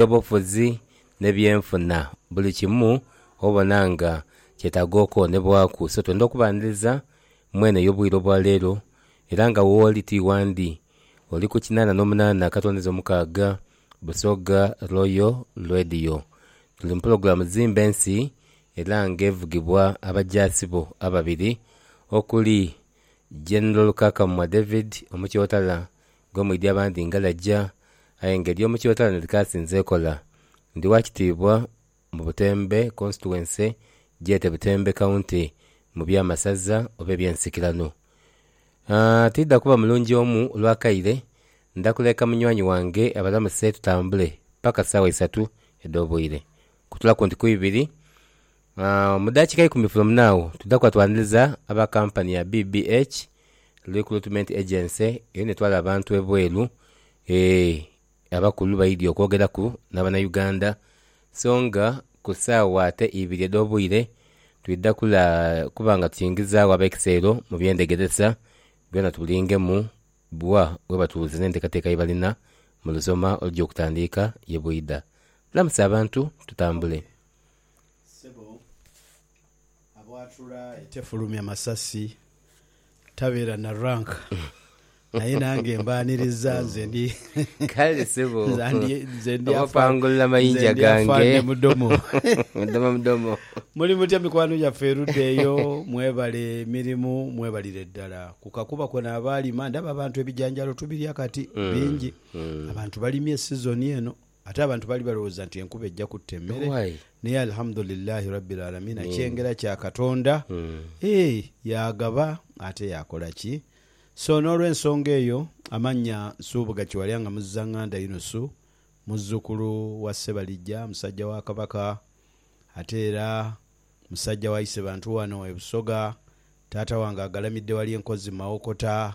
Eby'obufuzi n'ebyenfuna, buli kimu obona nga kyetaaga okwonebwaku. So twenda okubaaniriza mu eno ey'obwire obwa leero, era nga wooli ti wandi. Oli ku kinaana n'omunaana akatondezo omukaaga Busoga Royal Radio. Tuli mu pulogulaamu Zimba Ensi era nga evugibwa abajaasi bo ababiri okuli General Lukakamwa David, Omukyotala, gwe mwidhi abandhi ngalaja, aye nga ery'omu Kibatalana likaasinze ekola. Ndi wa kitiibwa mu Butembe Constituency, gyete Butembe County, mu by'amasaza oba eby'ensikirano. Aah, tiidha kuba mulungi omu lwa kaire, ndha kuleka munywani wange abalamuse tutambule paka saawa isatu edh'obwire. Kutulaku nti ku ibiri. Mu daakika ikumi from now, twidha kuba twaniriza aba kampani ya BBH Recruitment Agency era netwala abantu ebweru eeh abakulu baidhi okwogeraku n'abanauganda so nga ku saawa ate ibiri edh'obwire twidha kula kuba nga tukiingizagho ab'ekisero mu by'endhegeresa byona tubulingemu bwa bwebatuwuliza n'enteekateeka yebalina mu lusoma olugya okutandiika ye bwidha. Lamusa abantu tutambule. Ssebo, abwatula etefulumya masasi tabeera na rank naye nange mbaaniriza nze ndi Kale sebo. nze ndi nze ndi afa- Obapangulula nze mayinja ndi gange. afande mudomo Mudomo mudomo. Muli mutya mikwano gyaffe erudda eyo mwebale mirimu mwebalire ddala ku kakuba kona abaalima ndaba abantu ebijanjaalo tubirya kati bingi abantu balimye sizoni eno Ate abantu baali balowooza nti enkuba eja kutta emmere, naye Alhamudulillaahi Rabbil Aalamiina kyengera kya Katonda, eeh, yaagaba ate yaakola ki? So n'olw'ensonga eyo amannya Nsubuga Kiwalya nga Muzzanganda Yunusu, muzzukulu wa Ssebalijja musajja wa Kabaka ate era musajja wa Isebantu wano e Busoga, taata wange agalamidde wali e Nkozi mu Mawokota,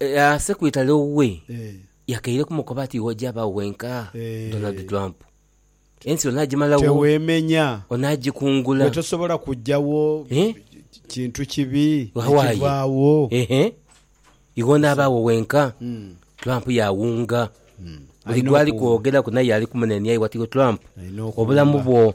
Aase ku itale owe yakaire kumukoba ati iwe oja baawo wenka Donald Trump ensi onajimalawo onajikungula gwe tosobola kujawo kintu kibi nikivaawo iwe onabaawo wenka Trump yawunga buli gwali kwogeraku naye yali kumunenia iwe ati iwe Trump obulamu bwo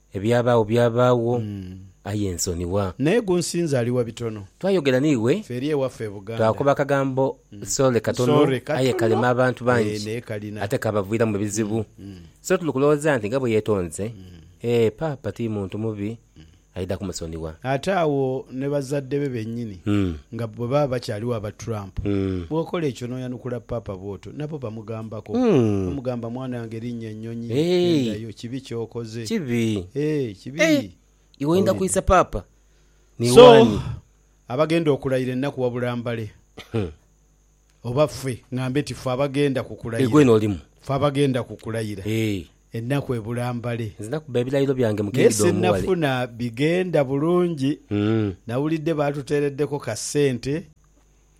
Ebyabaagho byabaagho, aye nsonigha. Naye gunsinza ali wa bitono. Twayogera n'iwe. Ffe eri ewaffe e Buganda. Twakoba akagambo sore katono, aye kalema abantu bangi ate kaabaviiramu ebizibu. So tuli kulowooza nti nga bwe yeetonze, ee Paapa ti muntu mubi, aidha kumusonigha. Ate agho ni bazadde be bennyini nga bwe baba bakyaligho aba Trump, bw'okola ekyo n'oyanukula Paapa bw'otyo. Nabo bamugambako, bamugamba, Mwanange, linnya ennyonyi, ghendayo. Kibi ky'okoze. Eeh, kibi. Owulidde? So, abagenda okulayira ennaku wabula mbale, oba ffe, ŋŋambe nti ffe abagenda ku kulayira, ffe abagenda ku kulayira, ennaku ebula mbale. Naye sinnafuna bigenda bulungi. Nnawulidde baatuteereddeko ka ssente.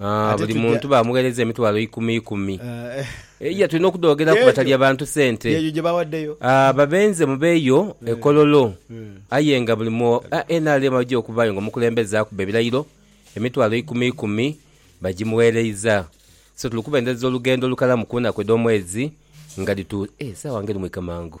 Ah, Ate buli tugya- muntu baamugheereza emitwalo ikumi ikumi. Eh, Iya, tulina okudhoogeraku Kyejo. batalya bantu sente. Yeeyo gye bawaddeyo. Ah, babenze mubeeyo e Kololo. Aye nga buli mu ah, nrm aja okubaayo nga omukulembeze akuba ebirayiro, emitwalo ikumi ikumi bagimugheereiza. So tuli kubendhereza olugendo olukalamu ku nnaku edh'omwezi nga dhitu... Eh, esaawa nga eri mwika mangu.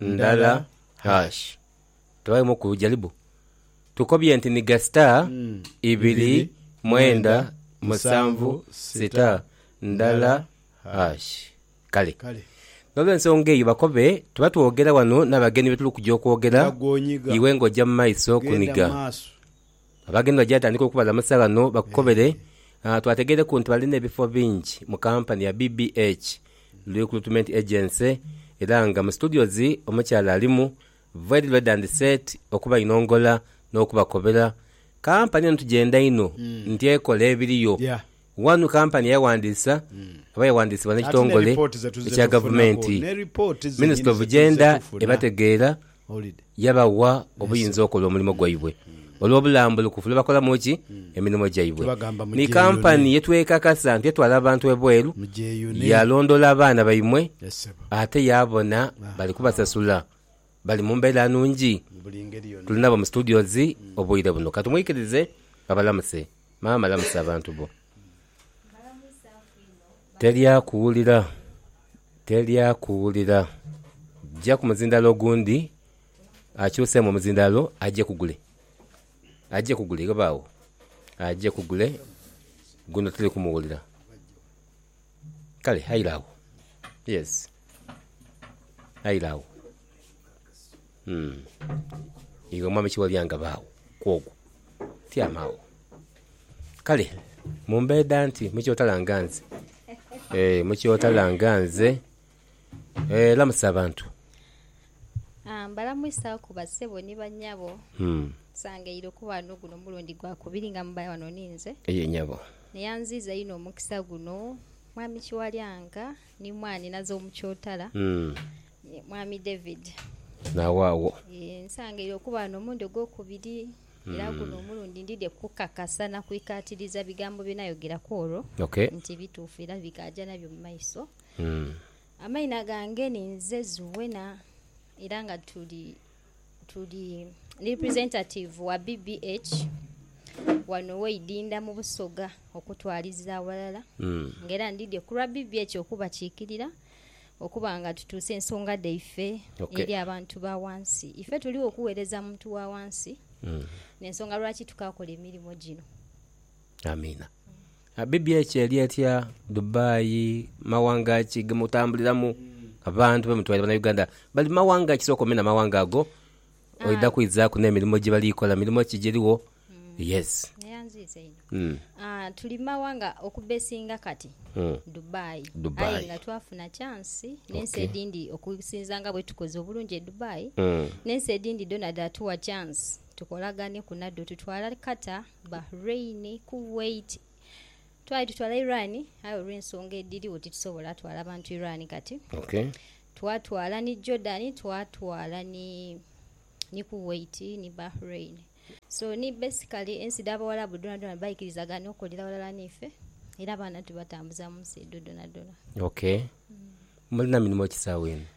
ndala hash tebalimu ku jaribu tukobye nti ni ga star ibiri mwenda musanvu star ndala hash kale nolwensonga eyo bakobe tuba twogera wano nabagenyi betuli kuja okwogera iwe nga oja mumaiso kuniga Abagenyi bajja tandika okubaza amasaagha ghano bakukobere. Twategeireku nti balina ebifo bingi mu kampani ya BBH Recruitment Agency era nga mu studios omukyala alimu very ready and set okubainongola n'okubakobera. Kampani eno tugyenda inho nti ekola ebiriyo Wano kampani eyawandiisa oba eyawandiisibwa n'ekitongole ekya gavumenti, Ministry of Gender ebategeera yabawa obuyinza okola omulimo gwaibwe olw'obulambulukufu lwebakolamu ki emirimo gyaibwe. Ni kampani yetwekakasa nti etwala abantu ebweru, yalondoola abaana baimwe ate yabona bali kubasasula, bali mu mbeera nungi. Tuli nabo mu studios obwire buno, katumwikirize abalamuse. Maama lamusa abantu bo. Teri akuwulira, teri akuwulira. Jja ku muzindaalo ogundi akyuseemu omuzindaalo aje ku gule. Aje ku gule, ghobe agho. Aje ku gule, guno tiri kumuwulira. Kale aira agho. Yes. Aira agho. Iwe Mwami Kiwalyanga baagho kw'ogwo. Tyama agho. Kale mumbeeda nti mukyotalanga nze. Eeh mukyotalanga nze. Lamusa abantu. Mbalamwisaku basebo ni banyabo. Nsangaire okuba ghano guno mulundi gwa kubiri nga mubaire ghano ni nze. Aye nyabo. Naye anziiza inho omukisa guno Mwami Kiwalyanga ni Mwaani Nazo Mukyotara, ni Mwami David. N'awaagho. Yee, nsangaire okuba ghano omulundi ogwokubiri era guno omulundi ndidhie kukakasa na kwikaatiriza bigambo bye nayogera ku olwo nti bituufu era bikaaja nabyo mu maiso. Amaina gange ninze Zuena era nga tuli tuli ndi representative wa BBH wano weidinda mu busoga okutwaliza aghalala nga era ndidye kulwa BBH okubakikirira okuba nga tutuusa ensonga dhaife eri abantu ba wansi. Ife tuligho kuwereza muntu wa wansi nensonga lwaki tukakola emirimo gino. Amiina. Abbibya ekyo eli etya Dubai mawanga ki gemutambuliramu abantu bemutwaire bana Uganda bali mumawanga kisoka omenha amawanga ago oidha kwizaku nemirimo gyebali kola mirimo ki gyerigho yes tuli mumawanga okubesinga kati Dubai aye nga twafuna chance nensi edhindhi okusinza nga bwetukoze obulungi edubai nensi edhindhi dhona dhatuwa chance Tukolagane ku nadho tutwala Qatar, Bahrain, Kuwait twali tutwala Iran aye olw'ensonga edhirigho titusobola twala bantu Iran kati. Okay. Twatwala ni Jordan, twatwala ni ni Kuwait ni Bahrain. So ni basically ensi dha Bawarabu dhonadhona baikirizagana okolera ghalala n'ife era abaana tubatambuza mu nsi edho dhonadhona. Okay. Mulina mirimo ki sawa eno?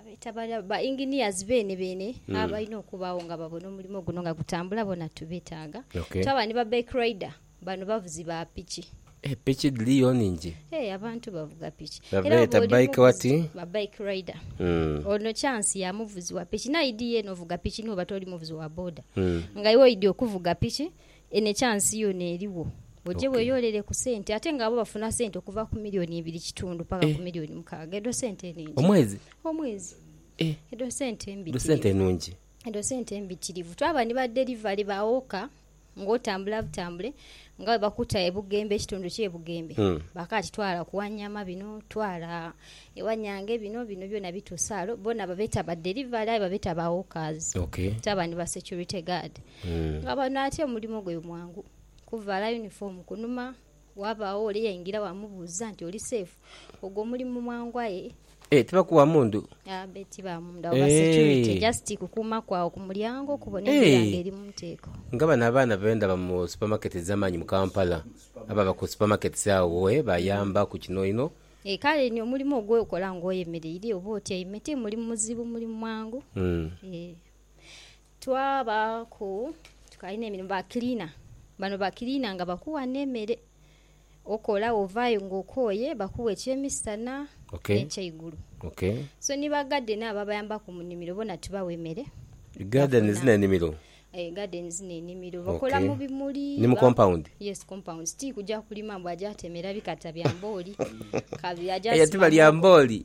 Abeeta bali ba engineers beene beene abalina okubaagho nga babona omulimo guno nga gutambula boona tubetaaga. Twaba ni ba bike rider, bano bavuzi ba piki. Eh piki dhiriyo nhingi? Eh abantu bavuga piki. Babeeta bike wati? Ba bike rider. Ono chance ya muvuzi wa piki. Naidhi yeena ovuga piki ni bwoba toli muvuzi wa boda. Nga iwe oidhi okuvuga piki Eno ekyansi yoona erigho. Oje Ok. weyoolere ku sente ate nga abo bafuna sente okuva ku milioni ibiri kitundu paka ku Eh. milioni mukaaga. Edho sente nhingi. Omwezi? Omwezi. Eh. Edho sente Dho mbitirivu. sente nungi. Edho sente mbitirivu. Twaba ni ba delivery ba woka ng'otambula butambule nga bwe bakuta e Bugembe, ekitundu ky'e Bugembe. Mm. Bakaati twala ku Wanyama bino, twala e Wanyange bino, bino byona bituusa ghale. Bona babeeta ba delivery aye babeeta ba wokas. Ok. Twaba ni ba security guard. nga bano ati omulimo gwe mwangu kuvaala yunifoomu kunuma, wabaagho ole eyaingira waamubuuza nti oli seefu, ogwo omulimu mwangu aye. Eeh tibakuwa mundhu? Aah be tiba mundhu, abo ba security Eeh. just kukuuma kwa agho ku mulyango okubona Eeh. embeera nga eri mu nteeko. Nga bano abaana be ndaba mu supermarket edhamaanyi mu Kampala, ababa ku supermarkets agho eeh bayamba ku kino inho. Eeh kale ni omulimo ogwo okola nga oyemereire oba otyaime ti mulimu muzibu mulimu mwangu eeh. Twabaaku twali n'emirimu, bakiliina. Bano bakiliina nga bakuwa n'emere okola wovaayo ng'okooye, bakuwa eky'emisana n'ekyeigulu. So ni bagadeni abo abayambaku mu nimiro bona tubawa emere. Gardens n'enimiro? Ee, gardens n'enimiro. Bakola mu bimuli. Ni mu compound? Yes, compound. Ti kuja kulima mbu aje atemera bikata bya mbooli. Aye ti balya mbooli?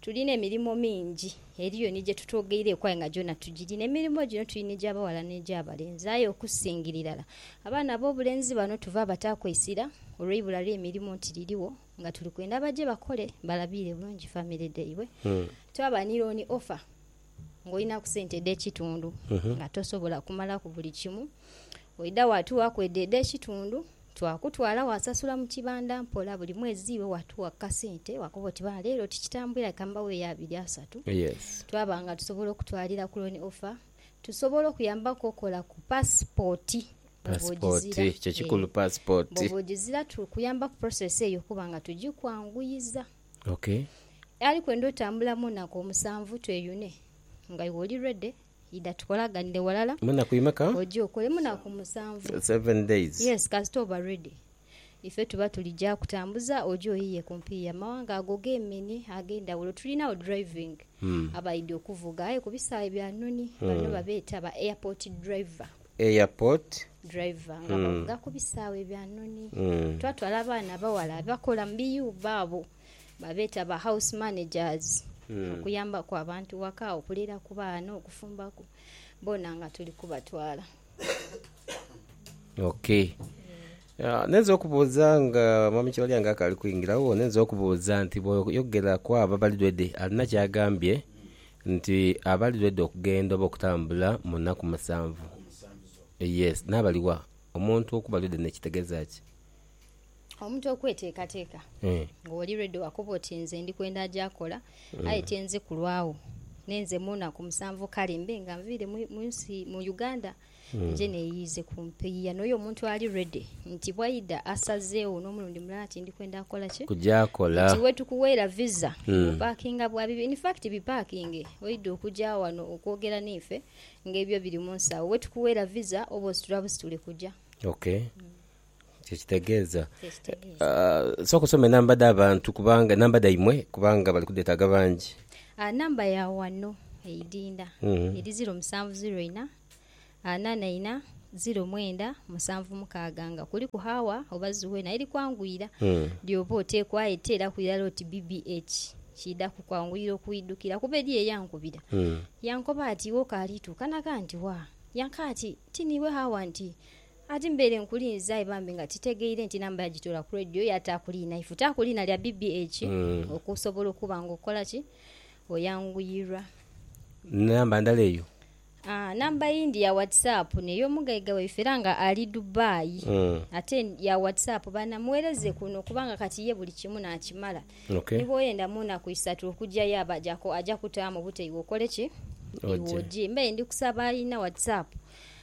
Tulina emirimo mingi. Eriyo ni gye tutwogeireku aye nga gyona tugirina. Emirimo gino tulina egy'abaghala n'egy'abalenzi. Aye okusingira irala, abaana ab'obulenzi bano tuva bataaku eisira olw'eibula ly'emirimo nti lirigho nga tuli kwenda baje bakole balabiire bulungi famire dhaibwe. Twaba ni looni ofa ng'olinaku sente edh'ekitundu nga tosobola kumalaku buli kimu. Oidha waatughaku edho edh'ekitundu. Twakutwala wasasula mu kibanda mpola buli mwezi iwe watugha ku kasente wakoba oti ba leero tikitambwira leka mbaweeyo abiri asatu. Twaba nga tusobola okutwalira ku Loan Offer tusobola okuyambaku okola ku paasipooti bwoba ogizira. Bwoba ogizira tukuyamba ku process eyo okuba nga tugikwanguyiza. Aye kwenda otambula mu naku omusanvu tweyune nga iwe oli ready. Idha tukolaganire walala. Munaku imeka? Oje okole munaku musanvu. Seven days. Yes kasita oba ready ife tuba tulija kutambuza oje oyiye kumpi yamawanga ago gemini agendawulo tulinagho driving abaidhi okuvuga aye kubisaghe bya noni bano babeta ba airport driver. Airport. Driver nga bavuga kubisaghe bya noni. Twatwala abaana abawala abakola mubiyumba abo. Babeeta ba house managers okuyambaku abantu ghaka, okuliraku baana, okufumbaku, boona nga tuli kubatwala. Ok. Ah, ninza okubuuza nga Mwami Kibalya nga akaali kwingiragho, ninza okubuuza nti bw'oyogera ku abo abali ready, alina ky'agambye nti abali ready okugenda oba okutambula mu nnaku musanvu? Yes. N'abali wa? Omuntu okuba ready kitegeeza ki? Omuntu okweteekateeka nga oli redi wakoba oti nze ndi kwenda aja akola aye tienze kulwagho nenze mu naku musanvu kale mbe nga nviire mu nsi mu Uganda nje neyiize ku mpiiya n'oyo omuntu ali redi nti bwaidha asazeegho n'omulundi mulala nti ndi kwenda kukola ki? Nti iwe tukuweira viza bwopakinga bwa bibiri in fact bipakinge oidha okuja ghano okwogera naife nga ebyo biri mu nsawo wetukuweira viza oba ositula busitule kuja. Kye kitegeeza. Sooka osome namba dha bantu kubanga, namba dhaimwe kubanga bali kudheetaaga bangi. Namba ya wano eidinda eri ziro musanvu ziro ina ana na ina ziro mwenda musanvu mukaaga nga kuliku haawa oba zuwe naye likwanguyira ly'oba oteekwa aye teeraku irala oti BBH. Kiidha kukwanguyira okwidhukira kuba eriyo eyankubira yankoba ati, Iwe okaali tuuka na ghanti wa? Yankaa ati, Ti niiwe haawa nti Ati mbaire nkulinze aye bambi nga titegeire nti namba yagitola ku radio yataaku liina ifu taaku liina lya BBH okusobola okuba nga okola ki oyanguyirwa. Ni namba ndala eyo? Aa namba eyindi ya whatsapp ney'omugaiga waife era nga ali Dubai ate ya whatsapp baana mughereze kuno kubanga kati ye buli kimu naakimala ni bw'oyenda mu naku isatu okujayo aba ajaku aja kutaamu bute iwe okole ki iwe oje. Mbaire ndi kusaba alina whatsapp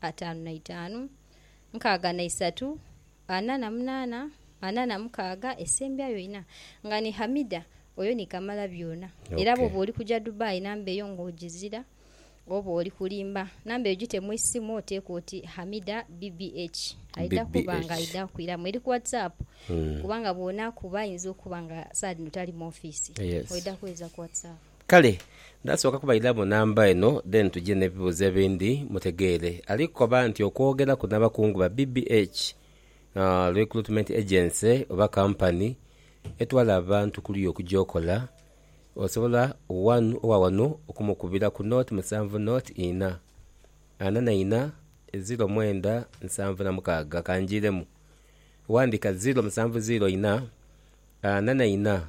ataanu na itaanu, nkaaga na isatu, ana na munaana, ana na mukaaga, esembyayo ina. Nga ni Hamida, oyo ni kamalabyona. Era bwoba oli kuja Dubai namba eyo nga ojizira, oba oli kulimba, namba eyo gite mu isimu oteeke oti Hamida BBH. Aidha kuba nga aidha kukwiramu. Eri ku WhatsApp, kubanga bwonaakuba ayinza okuba nga saadh dhino tali mu office. Oidha kweeza ku WhatsApp. Kale ndasooka kubairamu namba eno then tuje nebibuuzo ebindi mutegeere. Ali kukoba nti okwogeraku nabakungu ba BBH, Recruitment Agency oba company etwala abantu kuluya okuja okola, osobola wanu owa wano okumukubira ku nought musanvu nought ina, ana na ina, ziro mwenda nsanvu na mukaaga. Kanjiiremu. Wandika ziro musanvu ziro ina, ana na ina.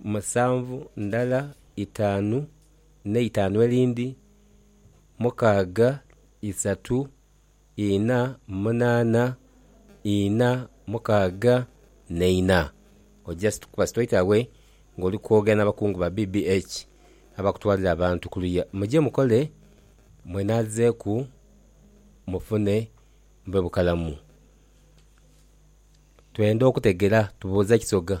musanvu ndala, itaanu n'eitaanu erindhi, mukaaga, isatu, ina, munaana, ina, mukaaga n'eina. Oja situka situlaiti awe ng'oli kwogera n'abakungu ba BBH abakutwalira abantu kuluya. Muje mukole mwenaazeeku mufune mube bukalamu. Twenda okutegera tubuuze kisoga.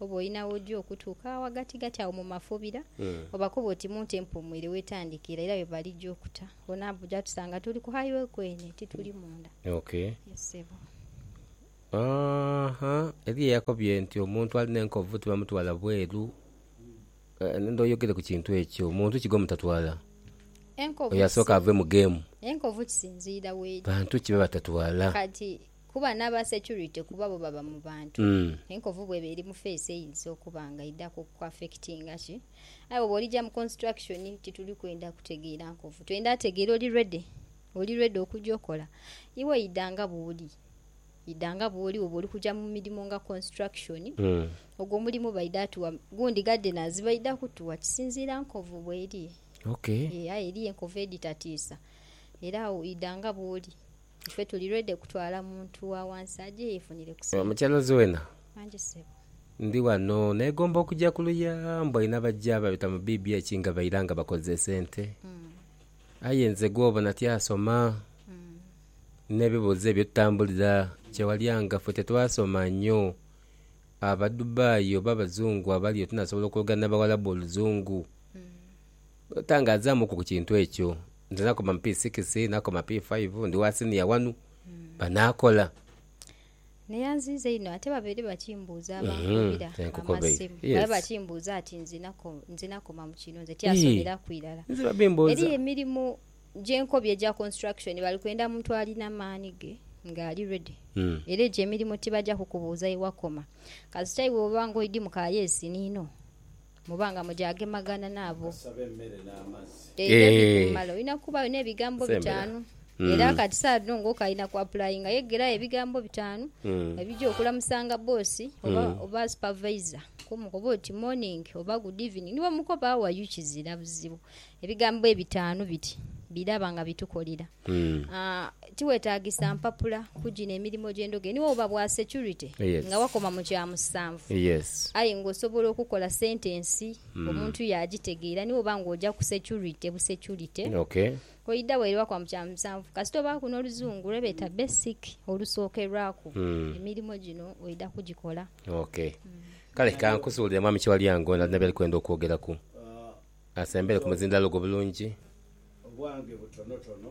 oba olina w'oja okutuuka agho ghagatigati agho mu mafobira, obakobe oti mu nte empuumwire wetandikira era yo balija okuta. Ono aja tusanga tuli ku highway kwene tituli munda. Ok. Yes ssebo. Aaha, eriyo eyakobye nti omuntu alina enkovu tibamutwala bweru, ndidha oyogere ku kintu ekyo. Muntu ki gwemutatwala? Enkovu. Oyo asooke ave mu game. Enkovu kisinziira w'eri. Bantu ki bebatatwala? Kati. Kuba n'aba security kuba bo baba mu bantu. Enkovu bw'eba eri mu face eyinza okuba nga eidha kuku affectinga ki. Aye bwoba olija mu construction tituli kwenda kutegeera nkovu. Twenda ategeera oli ready, oli ready okuja okola. Iwe idha nga bw'oli. Idha nga bw'oli bwoba oli kuja mu mirimo nga construction. Ogwo omulimu baidha tugha, gundi gardeners baidha kutugha kisinziira nkovu bw'eri. Aye eriyo enkovu edhitatiisa era awo idha nga bw'oli. Ife tuli ready kutwala muntu wa wansi aje yefunire ku sente. Mukyalaze wena. Wangi sebo. Ndi wano negomba okuja kuluya mbu alina abaja babita mu BBH nga baira nga bakoze esente aye nze gwobona tyasoma nebibuzo ebyo tutambulira kyewalyanga ffe tetwasoma nyo aba Dubai oba abazungu abaliyo tunasobola okwogera nabawalabu oluzungu. Tangazaamuku ku kintu ekyo. Nze nakoma mu P-sikisi, nakoma P-faivu, ndi wa siniya wanu. Banaakola. Naye anziiza inho ate babaire bakimbuuza abankubira amasimu. Babaire bakimbuuza ati nze nakoma mu kino, nze tyasomeraku irala. Eriyo emirimu gye nkobye egya construction bali kwenda muntu alina maani ge nga ali ready. Era egyo emirimu tibaja kukubuuza ye wakoma. Kasita iwe oba ng'oidhi mu ka yeesi niino. Muba nga mugyagemagana n'abo eira ebikumala. Olina kubaayo n'ebigambo bitaanu. Era kati saagha dhino ng'oku ali na kuapulayinga, yegerayo ebigambo bitaanu ebija okulamusanga bbosi oba oba supavayiza. K'omukobe oti, Morning oba Good evening. Ni bwomukoba, How are you? kizira buzibu. Ebigambo ebitaanu biti biraba nga bitukolera. Tiwetaagisa mpapula kugina emirimo gy'endhoge. Ni woba bwa securite nga wakoma mu kya musanvu aye ng'osobola okukola sentensi omuntu yaagitegeera ni woba ng'oja ku securite busecurite. Oidhagho ere wakoma mu kya musanvu kasita obaaku n'Oluzungu lwe beeta basic olusookerwaku, emirimo gino oidha kugikola. Kale ka nkusuubulire Mwami Kiwalya ng'oidha n'okuba by'oli kwenda okwogeraku. Asembere ku muzindaalo gwo bulungi. Obwange butonotono.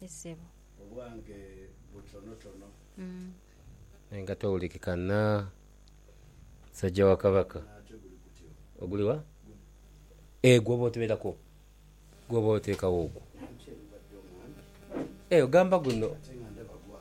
Ye sebo. Obwange butonotono. Aye nga towulikikana musajja wa Kabaka. Ate guli gutyo. Oguli wa? Ee gwoba oteberako gwoba oteekawo ogwo. Ee ogamba guno. Ate nga ndaba gwa.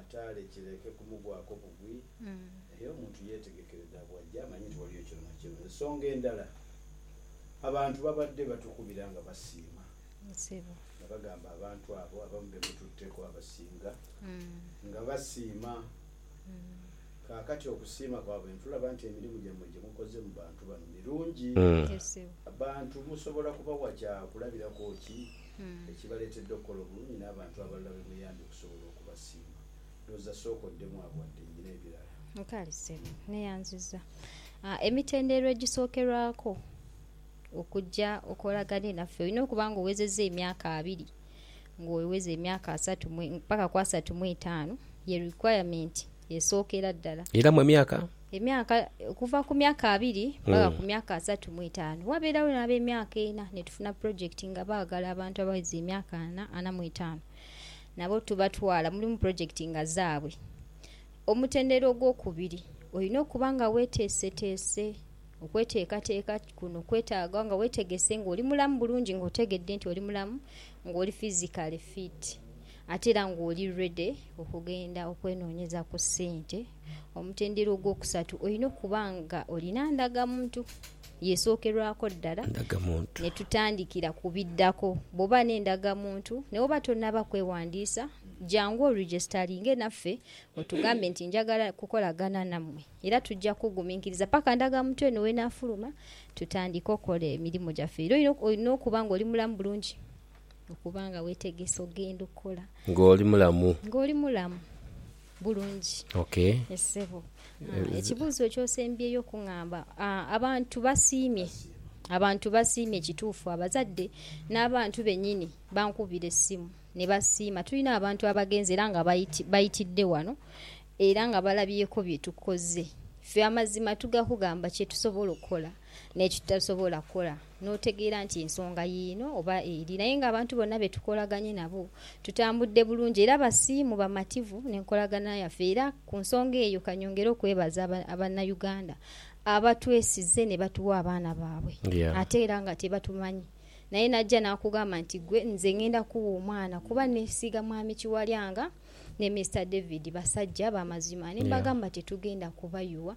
ataale kireke kumugwaku bugwi, aye omuntu yeetegekere dha bw'ajja amanye nti waliyo kino na kino. Ensonga endala, abantu babadde batukubira nga basiima nga bagamba abantu abo abamu be mututteeko abasinga nga basiima. Kaakati okusiima kwabwe ntulaba nti emirimu gyammwe gye mukoze mu bantu bano mirungi. Abantu musobola kubawa kya kulabirako ki? ekibaleetedde okukola obulungi n'abantu abalala be muyambye okusobola okubasiima. Ndhooza sooka oddemu agho wadde nyina ebirala. Nkaali ssebo. Neyanziza. Emitendera egisookerwaku okuja okolagane naffe olina okuba nga oghezezza emyaka abiri, ng'ogheza emyaka asatu paka ku asatu mu etaanu, ye requirement. esookera ddala. Era mu emyaka. Emyaka, okuva ku myaka abiri mpaka ku myaka asatu mu etaanu. Wabeerawo n'ab'emyaka ena, ni tufuna pulojekiti nga baagala abantu abagheza emyaka ana, ana mu etaanu. Nabo tubatwala, mulimu pulojekiti nga zaabwe. Omutendera ogwokubiri, olina okuba nga weeteeseteese. Okweteekateeka kuno kwetaaga nga weetegese, ng'oli mulamu bulungi, ng'otegedde nti oli mulamu, ng'oli fizikale fiiti. Ate era ng'oli ready okugenda okwenoonyeza ku ssente, omutendera ogwokusatu olina okuba ng'olina ndagamuntu. Y'esookerwako ddala ne tutandikira ku biddako. Bw'oba n'endagamuntu ne bw'oba tonnaba kwewandiisa, jangu orijisitalinge naffe otugambe nti njagala kukolagana nammwe era tujja kukuguminkiriza paka ndagamuntu eno w'enaafuluma tutandike okukola emirimu gyaffe. Era olina okuba ng'oli mulamu bulungi. okuba nga weetegese ogenda okukola. Nga oli mulamu. Nga oli mulamu bulungi. Okay. Yes ssebo. Ekibuuzo ky'osembyeyo okung'amba, abantu basiimye, abantu basiimye kituufu abazadde n'abantu bennyini bankubira essimu ni basiima. Tulina abantu abagenze era nga baitidde wano era nga balabyeeko bye tukoze. Ffe amazima tugakugamba kye tusobola okukola n'ekitutasobola kukola. n'otegeera nti ensonga yiino oba eri naye nga abantu bonna be tukolaganye nabo tutambudde bulungi era basiimu, bamativu n'enkolagana yaffe era ku nsonga eyo ka nyongere okwebaza Bannayuganda abatwesize ne batuwa abaana baabwe ate era nga tebatumanyi naye n'ajja n'akugamba nti ggwe nze ng'enda kukuwa omwana kuba nneesiiga Mwami Kiwalyanga ne Mister David basajja ba mazima ne mbagamba tetugenda kubayuwa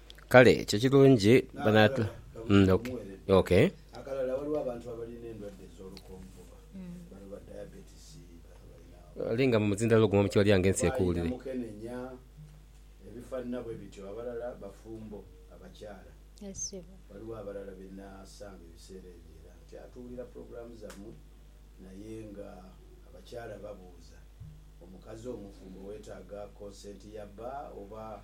Kale ekyo kirungi banatu ok. Akalala waliwo abantu abalina endwadde ez'olukonvuba bano ba diabetes bali nga mumuzindalo ogumu mukyolyange ensi ekuwulire. Balina mukenenya ebifanana bwebityo abalala bafumbo abakyala waliwo abalala benasanga ebiseera ebyo era nkyatuwulira program zamwe naye nga abakyala babuuza omukazi omufumbo wetaaga consent ya bba oba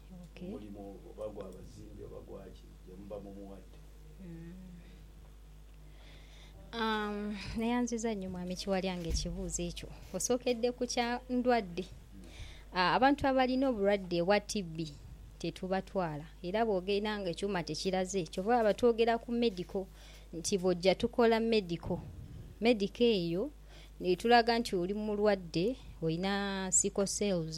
omulimo ogwo, oba gwa bazimbi oba gwa ki, gye muba mumuwadde. Neyanziza nnyo Mwami Kiwalyango ekibuuzo ekyo. Osookedde ku kya ndwadde. Abantu abalina obulwadde obwa TB tetubatwala era bw'ogenda ng'ekyuma tekiraze, kyova olaba twogera ku medical nti bw'ojja tukola medical. Medical eyo etulaga nti oli mulwadde, olina sickle cells.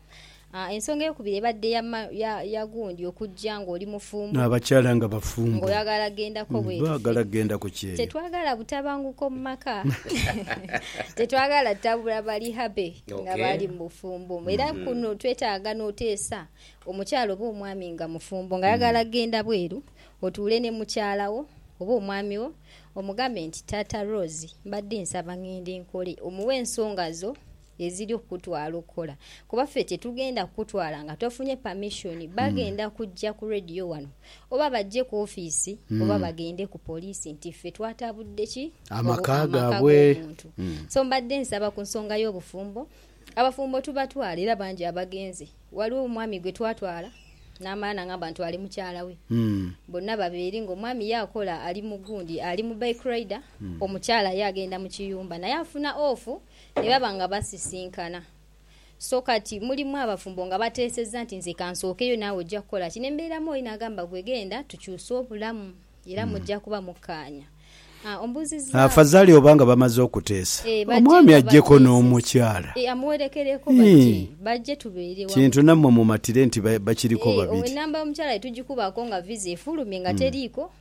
Ensonga eyokubiri ebadde ya gundi okujja ng'oli mufumbo. N'abakyala nga bafumbo. Ng'oyagala gendako bweru. Baagala gendako kyeyo. Tetwagala butabanguko mu maka. Tetwagala tabula bali happy nga bali mu bufumbo. Era kuno twetaaga n'oteesa omukyala oba omwami nga mufumbo ng'ayagala kugenda bweru, otuule ne mukyala wo oba omwami wo omugambe nti, Taata Rose mbadde nsaba ng'ende nkole. Omuwe ensonga zo. eziri okukutwala okukola kuba ffe tetugenda kukutwala nga tofunye permission hmm. bagenda kujja ku radio wano oba bajje ku offiisi hmm. oba bagende ku poliisi nti ffe twatabudde ki amaka g'omuntu hmm. so mbadde nsaba ku nsonga y'obufumbo abafumbo tubatwala era bangi abagenze waliwo omwami gwe twatwala n'amala nangamba ntwale mukyala we bonna babeeri ng'omwami ye akola ali mu gundi ali mu bike rider omukyala ye agenda mu kiyumba naye afuna ofu ne baba nga basisinkana. So kati mulimu abafumbo nga bateesezza nti nze ka nsookeyo naawe ojja kukola ki? Ne mbeeramu oli n'agamba gwe genda tukyuse obulamu era mujja kuba mukkaanya. Ah, ombuuzizzaako. Afazali oba nga bamaze okuteesa. Eh, bajje Omwami nga ajjeko bateesezza. n'omukyala. Eh, amuwerekereko Ii. bajje, bajje tubeere wamu. Kintu nammwe mumatire nti ba- bakiriko Eh, owo babiri. ennamba y'omukyala ye tugikubaako nga viza efulumye nga teriiko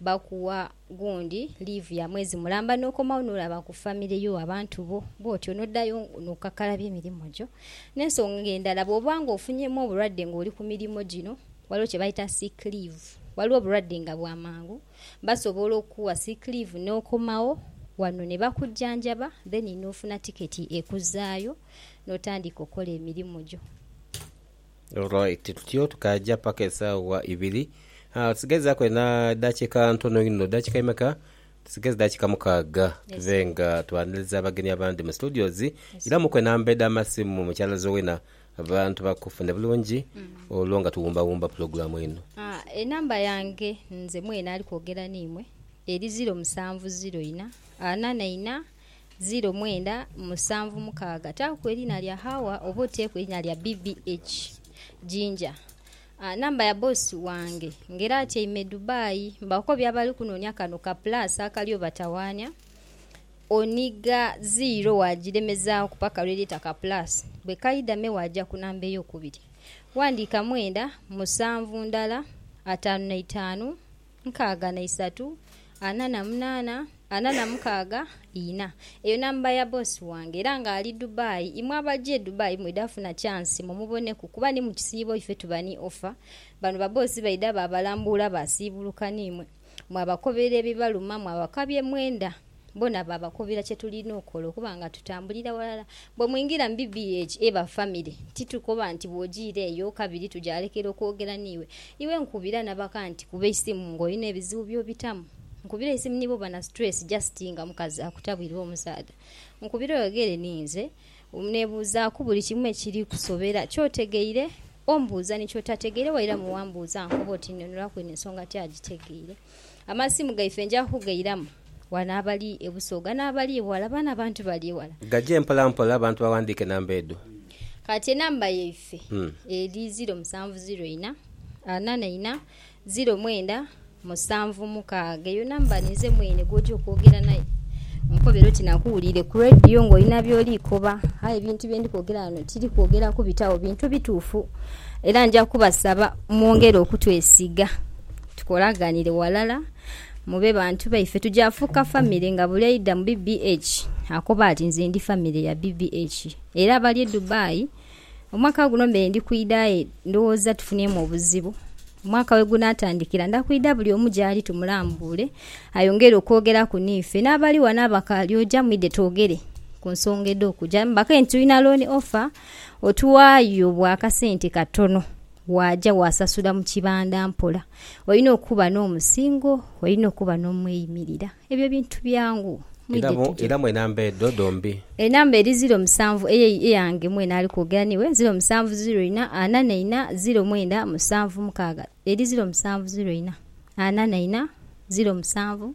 Bakuwa gundi liivu ya mwezi mulamba n'okomawo n'olaba ku famire yo, abantu bo, bw'otyo n'odhayo n'okakalabya emirimo gyo. N'ensonga endala, bw'oba ng'ofunyeemu obulwadde ng'oli ku mirimo gino, ghaligho kye bayita sick leave. Ghaligho obulwadde nga bwa mangu, basobola okukuwa sick leave n'okomawo ghano ni bakujjanjaba then n'ofuna tiketi ekuzaayo n'otandika okola emirimo gyo. Alright tutyo tukaja paka esawa ibiri aah tusigaizaku ena dakika ntono inho dakika emeka tusigaiza dakika mukaga tube nga twaniliza abagenyi abandi mu studios iramuku enamba edha masimu mukyala Zuena abantu bakufune bulungi olwo nga tuwumba wumba pulogulamu eno. Enamba yange nze mwene ali kwogera neimwe eri ziro musanvu ziro ina ana na ina ziro mwenda musanvu mukaaga. Taaku eriina lya Hawa oba oteeku eriina lya BBH Jinja. Namba ya boss wange nga era atyaime Dubai. Mbaako by'abali kunoonia kano ka plus akali obatawaania. Oniga ziro waagiremezaaku paka lwe lyeta ka plus. Bwe kaidha me waaja ku namba ey'okubiri. Wandiika mwenda, musanvu ndala, ataanu na itaanu. nkaaga na isatu, ana na munaana, ana na mukaaga, ina. Eyo namba ya boss wange era nga ali Dubai. Imwe abaja e Dubai mwidha funa chance mumuboneku kuba ni mu kisiibo ife tuba ni offer. Bano ba boss baidha baabalambuula baasiibuluka ni mwe. Mwabakobera ebibaluma, mwabakabya emwenda. Boona baabakubira kye tulina okukola okuba nga tutambulira ghalala. Bwe mwingira mu BBH eba famire, titukoba nti bw'ojiira eyo kabiri tugyalekera okwogera n'iwe. Iwe nkubira na baka nti kuba eisimu ng'olina ebizibu by'obitamu. Nkubira eisimu ni bwoba na situleesi jasiti nga mukazi akutabwirwa omusaadha. Nkubira oyogere ninze. Neebuuzaaku buli kimu ekiri kusobera. Ky'otegeire ombuuza ni ky'otategeire wairamu wambuuza nkoba oti nnhonholaku eno ensonga ti agitegeire. Amasimu gaife nja kukugairamu wano abali e Busoga n'abali eghala, baano abantu bali eghala. Gaje mpola mpola abantu baghandiike namba edho. Kati enamba yaife eri ziro musanvu ziro ina, ana na ina, ziro mwenda musanvu mukaaga. Eyo namba ninze mwene gw'oja okwogera naye onkobere oti nakuwuliire ku leediyo ng'olina by'oli koba. Aye ebintu bye ndi kwogera ghano tiri kwogera kubitagho, bintu bituufu. Era nja kubasaba mwongere okutwesiga. Tukolaghanire walala mube bantu baife. Tuja fuuka famire nga buli aidha mu BBH akoba ati nze ndi famire ya BBH. Era abali e Dubai, omwaka guno mbeire ndi kwidha aye ndhowooza tufunyemu obuzibu. Omwaka wegunaatandikira nda kwidha buli omu gyali tumulambuule ayongere okwogeraku n'ife. N'abali ghano abakaali oja mwidhe twogere ku nsonga edh'okuja. Mbakanye nti tulina loan offer otuwaayo bwa kasente katono. Waaja waasasula mu kibanda mpola. Olina okuba n'omusingo, olina okuba n'omweyimirira. Ebyo bintu byangu. Mwidhe tuje. Era mu enamba edho dhombi. Enamba eri ziro musanvu eyo eyange mwene ali kwogera n'iwe, ziro musanvu ziro ina, ana na ina, ziro mwenda musanvu mukaaga. Eri ziro musanvu ziro ina, ana na ina, ziro musanvu.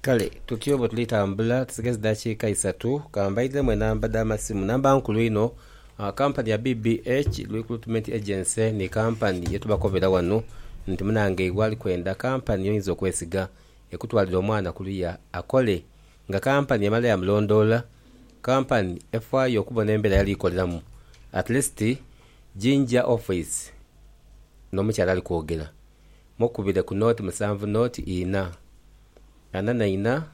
Kale tutyo bwe tuli tambula, tusigaza dakiika isatu ka mbaidhemu enamba dha masimu. Namba nkulu inho, kampani ya BBH Recruitment Agency ni kampani ye tubakobera ghano nti munangeibwe ali kwenda kampani y'oyinza okwesiga ekutwalire omwana kuluya akole nga kampani emala ya mulondoola, kampani efaayo okubona embeera yali koleramu at least jinja office n'omukyala ali kwogera. mukubire ku nooti musanvu nooti ina ana na ina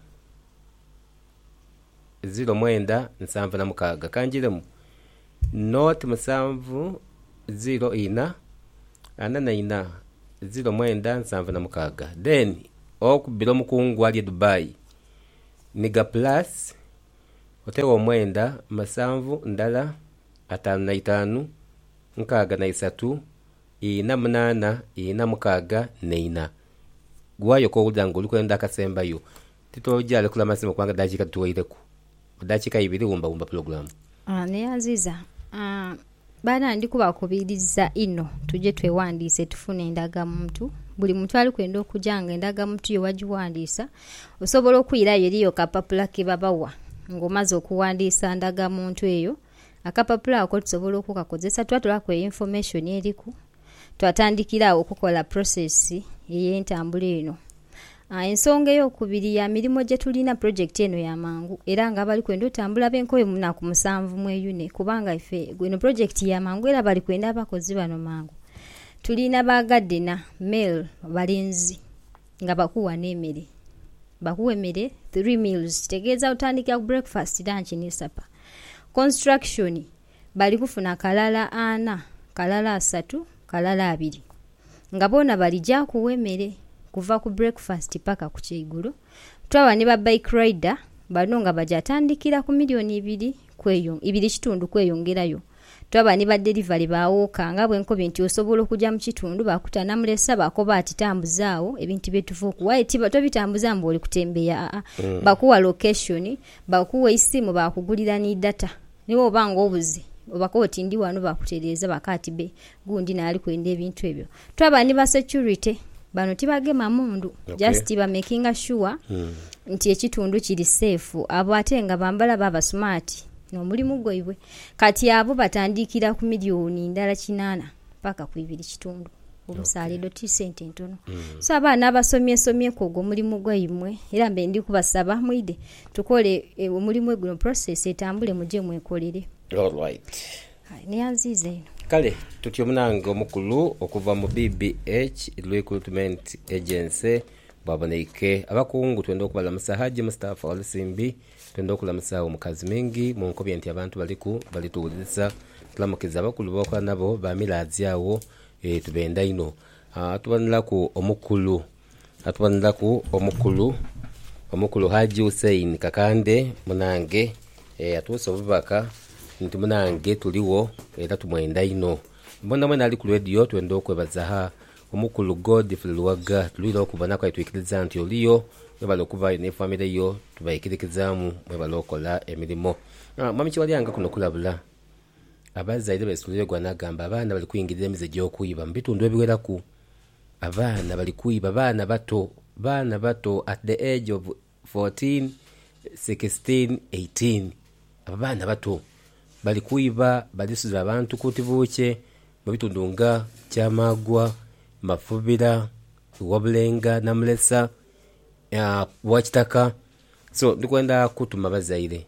ziro mwenda nsanvu na mukaaga. Kanjiremu, nooti musanvu ziro ina ana na ina ziro mwenda nsanvu na mukaaga then okubire omukungu ali e Dubai ni ga plus otegho omwenda musanvu ndala ataanu na itaanu nkaaga na isatu Ina munaana, ina mukaaga ne ina. Gwayo kowulira nga oli kwenda akasembayo, titoja lekula masimu kubanga dakiika dhituweireku. Mu dakiika ibiri wumba wumba pulogulamu. Neyanziza baana ndi kubakubiriza inho tuje twewandiise tufune endagamuntu. Buli muntu ali kwenda okuja nga endagamuntu yo wagiwandiisa, osobola okwirayo eriyo akapapula ke babawa nga omaze okuwandiisa ndagamuntu eyo. Akapapula ako tusobola okukakozesa twatolaku e information eriku twatandikira agho okukola process eyentambula eno. Ensonga eyokubiri ya mirimo gyetulina project eno ya mangu era nga abali kwenda otambula benkoyo munaku musanvu mweyune kubanga ife eno project ya mangu era bali kwenda abakozi bano mangu. Tulina ba gardener, male, balenzi nga bakuwa ne mere. Bakuwa emere three meals kitegeza otandikira ku breakfast, lunch ni supper. Construction bali kufuna kalala ana, kalala asatu, kalala abiri nga boona bali gyakuwa emere kuva ku breakfast paka ku kyeigulo. Twaba ni ba bike rider bano nga bagya tandikira ku million ibiri kweyo, ibiri kitundu kweyongerayo Twaba ni badelivari ba woka nga bwe nkobi nti osobola okuja mu kitundu baakuta namulesa baakoba ati tambuza agho ebintu bye tuva okuwa aye ti tobitambuza mbu oli kutembeeya aa bakuwa location, bakuwa eisimu baakugulira ni data ni bwoba nga obuze obakoba oti ndi ghano baakutereeza baakoba ati be gundi naali kwenda ebintu ebyo. Twaba ni ba security, bano tibagema mundu just ba makinga sure nti ekitundu kiri safe abo ate nga bambala baba smart nomulimu gwaibwe kati abo batandikira ku million ndala kinana paka ku ibiri kitundu omusala edho ti sente ntono so abaana abasomye somye ku ogwo omulimu gwaimwe era mbe ndi kubasaba mwidhe tukole omulimu guno process etambule muje mwekolere. Aye ni anziiza inho. Kale tutyo munange omukulu okuva mu BBH Recruitment Agency bwaboneike. Abakungu twenda okubalamusa Hajji Mustafa Walusimbi twenda okulamusa agho mu Kazimingi munkobye nti abantu baliku bali tuwulirisa. Tulamukiza abakulu bewakola nabo ba Mirazi agho tubenda inho. Tuboneraku omukulu atuboneraku omukulu omukulu Hajji Hussein Kakande munange eeh atuuse obubaka nti munange tuligho era tumwenda inho. Mwena mwena ali ku leediyo twenda okwebaza haa omukulu Godfrey Luwaga tulwira okubonaku aye twikiriza nti oliyo webale okubaayo ni famire yo tubaikirikizaamu mwebale okola emirimo. Mwami Kiwalyange kuno kulabula abazaire besitulire gho anagamba abaana bali kwingirira emize egy'okwiba mu bitundu ebiweraku. Abaana bali kwiba baana bato baana bato at the age of fourteen, sixteen, eighteen abo baana bato bali kwiba bali suza abantu kunti bukye mubitundu nga kyamagwa, mafubira, wabulenga, namulesa, wakitaka so ndikwenda kutuma bazaire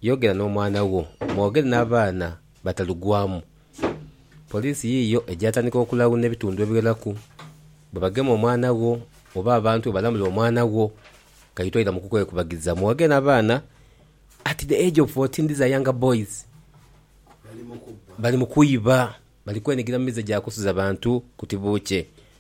Yogera n'omwana wo, mwogere n'abaana batalugwamu. Poliisi yiiyo egyatandika okulawuna ebitundu ebigheraku. Bwe bagema omwana wo oba abantu bwe balamula omwana wo, kaite oira mu kukwekubagiza. Mwogere n'abaana at the age of fourteen, these are younger boys, bali mu kubba, bali mu kwiba, bali kwenigira mu mize gya kusuza bantu kuti buukye.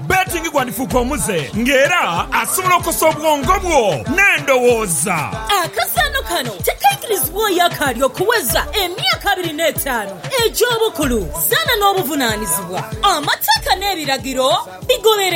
Betting gwandifuuka omuze nga era asobola okosa obwongo bwo n'endowooza. Akazaano kano tekaikirizibwa oyo akaali okuweza emyaka abiri n'etaanu egy'obukulu. Zaana n'obuvunaanizibwa. Amateeka n'ebiragiro bigobererwe.